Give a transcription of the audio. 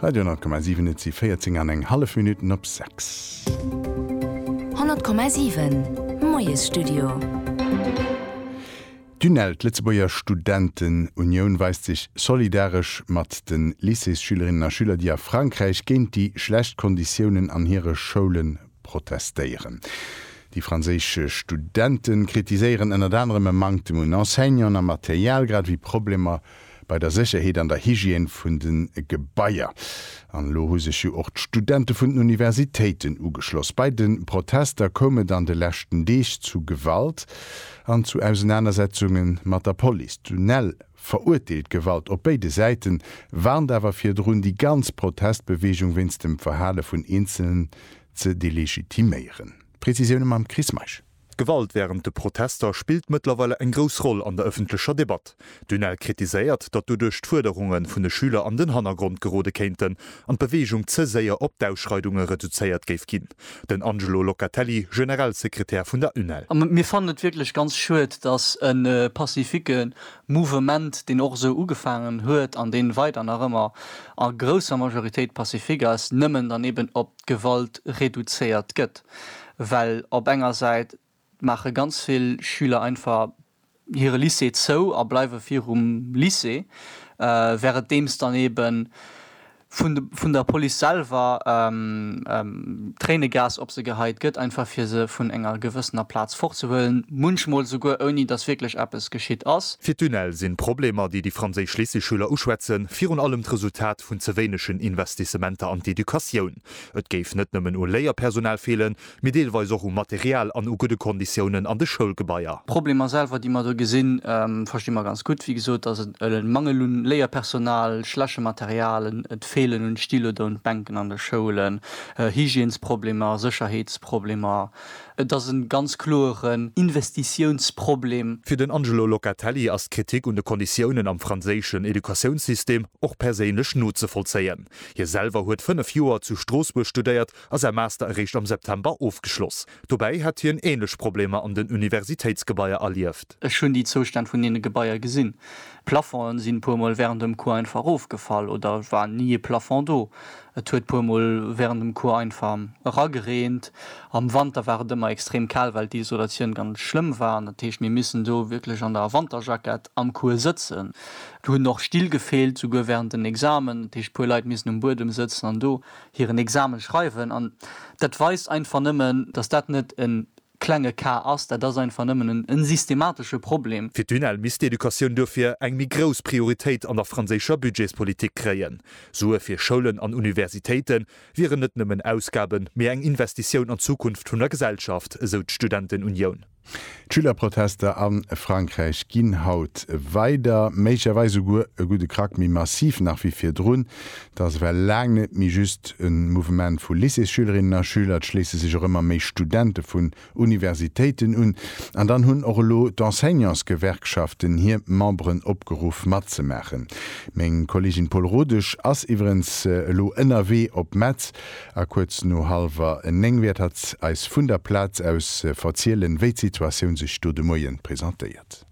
Radio 10,7 Et si 14 an eng hallef Minutten op 6. 100,7 Moiesstudio. D'UNEL, d'Lëtzebuerger Studentenunioun, weist sech solidaresch mat de Lycéesschülerinnen a Schüler, déi a Frankräich géint déi schlecht Konditiounen an hire Schoule protestéieren. Déi franséisch Studente kritiséieren ënnert anerem e Manktem un Enseignanten a Material, grad ewéi Problemer bei der Sécherheet an der Hygiène vun de Gebaier. An elo hu sech jo och d'Studente vun den Universitéiten ugeschloss. Bei de Protester koum et an de leschten Deeg zu Gewalt an zu Ausenanersetzunge mat der Police. D'UNEL verurteelt d'Gewalt op béide Säiten, warnt awer virdrun, déi ganz Protestbeweegung wéinst dem Verhale vun Eenzelen ze delegitiméieren. Prezisioune mam Chris Meisch. D'Gewalt wärend de Protester spillt mëttlerweile eng grouss Roll an der ëffentlecher Debatt. D'UNEL kritiséiert, datt doduerch d'Fuerderunge vun de Schüler an den Hannergrond gerode kéinten an d'Beweegung ze séier op d'Ausschreidunge reduzéiert géif ginn. Den Angelo Locatelli, Generalsekretär vun der UNEL. A mir fannen et wierklech ganz schued, datt e pacifique Mouvement, deen och esou ugefaangen huet an dee weider nach ëmmer a grousser Majoritéit pacifique ass, nëmmen dann eben op Gewalt reduzéiert gëtt, well op enger Säit maache ganz vill Schüler einfach hire Lycée zou a bleiwe virum Lycée, währendeems dann eebe vun der Police selwer Tréinegas op se geheit gëtt, einfach fir se vun enger gewëssener Plaz fortzehuelen, munchmol souguer ouni datt wierklech eppes geschitt ass. Fir d'UNEL sinn d'Problemer, déi déi franséisch Lycéeschüler uschwätzen, virun allem d'Resultat Impakt vun ze wéinegen Investissementer an d'Educatioun. Et géif net nëmmen u Léierpersonal feelen, mee deelweis och u Material an u gudde Konditiounen an de Schoulgebaier. D'Problemer selwer, déi mer do gesinn, versti mer ganz gutt. Wéi gesot ass et e Mangel un Léierpersonal, schleche Material, et feelen un Styloder un d'Bänken an de Schoulen, Hygiènesproblemer, Sécherheetsproblemer, Et ass e ganz kloeren Investitiounsproblem. Fir den Angelo Locatelli ass d'Kritik un de Konditiounen am franséischen Educatiounssystem och perséinlech nozevollzéien. Hie selwer huet fënnef Joer zu Stroossbuerg studéiert a säi Master eréischt am September ofgeschloss. Dobäi hätt hien änlech Problemer an den Universitéitsgebaier erlieft. Ech hunn déi Zoustänn vun deene Gebaier gesinn. D'Plafongen sinn e puer Mol wärend dem Cours einfach erofgefall oder war ni e Plafond do. Et huet puer mol während dem Cours einfach eragereent. Am Wanter war et ëmmer extrem kal well d'Isolatioun ganz schlëmm war. Dat heescht mir missen do wierklech an der Wanterjackett am Cours sëtzen. Do hunn och Still gefeelt, souguer während den Examen. Dat heescht puer Leit missen um Buedem sëtzen an do hiren Examen schreiwen. An dat weist einfach nëmmen, dass dat net en klenge Ka ass. Dat ass einfach nëmmen e systematesche Problem. Fir d'UNEL misst d'Educatioun duerfir eng méi grouss Prioritéit an der franséischer Budgetspolitik kréien. Sue fir Schoulen an Universitéite wieren net nëmmen Ausgaben, mee eng Investitioun an d'Zukunft vun der Gesellschaft, esou d'Studentenunioun. D'Schülerprotester a Frankräich ginn haut weider, méiglecherweis esouguer e gudde Krack méi massiv nach wéi virdrun. Et ass ewell laang net méi just e Mouvement vu Lycéesschülerinnen a schüler, et schléisse sech och ëmmer méi Studente vun Universitéiten un. An dann hunn och elo d'Enseignantsgewerkschaften hir Memberen opgeruff matzemaachen. Meng Kolleegin Paul Rodesch ass iwwerens elo ënnerwee op Metz a kuerz no hallwer néng wäert hatt eis vun der Plaz aus verzielen, wéi d'Situatioun sech do de Moien presentéiert.